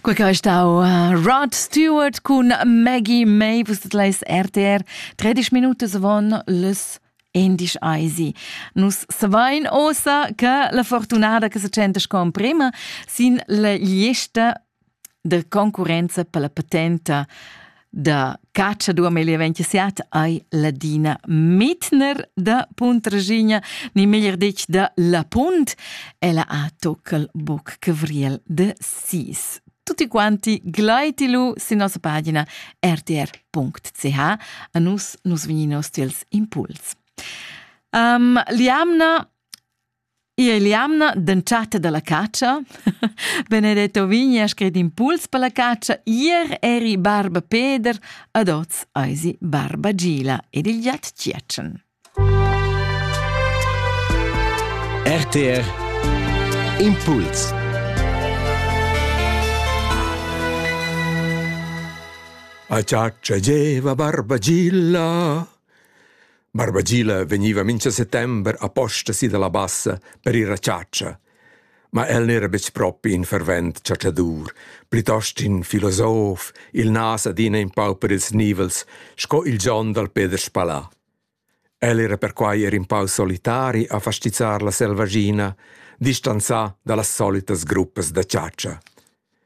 Quei che ei stau uh, Rod Stewart cun Maggie May, vus leis RTR 30 Minuten von les endisch eisi. Nus savein ossa che la fortunada che se centas con prima sin la lista de concurenza per la patenta da cacciadur meglio siat ai ladina Mitner da Puntraschigna, ni meglier detg da La Punt, ella ha toccal boc cevriel de sis. Tutti quanti glaiti lu sin nossa pagina rtr.ch a nus nus vegni nostri impuls. Um, Liamna Io e l'jamna d'entschatta da la catscha, Benedetto vegni ha scret impuls per la catscha, ier eri barba Peder, ad oz eisi barba Gila ed il giat Tgietschen. RTR Impuls A giaccia geva barba Gilla Barbagila vegniva mincha settember aposta si dalla bassa per ir a chatscha. Ma el n'era betg propi in fervent chatschadur, plitost in filosof, il nas adina in pau per ils nivels, sco il John dal Peter Spalà. El era perquai er in pau solitari a fastizzar la selvaschina, distanzà da las solitas gruppas da chatscha.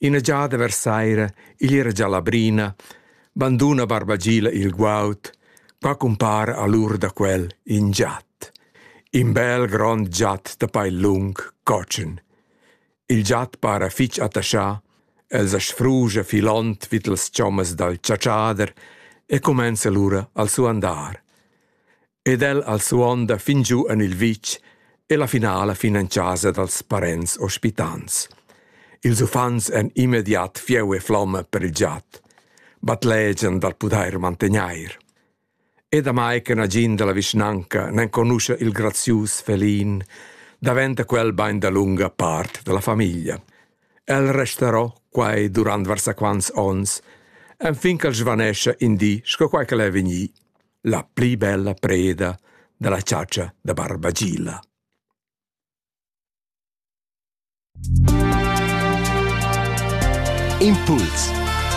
Ina giada vers saira igl era gia la brina, banduna Barbagila il guaud, qua cumpara a l'ura da quel in giat. In bel grond giat da pail lung, cotschen. Il giat para fitg attaschà, els as sfrugia filond vid las chommas dal chatschader e cumenza lura al suandar. ed el al suonda fin giu en il vitg e la finala fin en casa dals parents ospitants. Ils uffants èn immediat fieu e flomma per il giat. Batlegian dal pudair mantegnair. E damai che nagin da la vischnanca n'enconuscha il grazius felin, daventa quel bain da lunga part della famiglia. El resterò quai durant varsaquants onns, enfin ch'el svanescia in di sco quai che el è vegnì. la pli bella preda dalla chatscha da barbagila. Impuls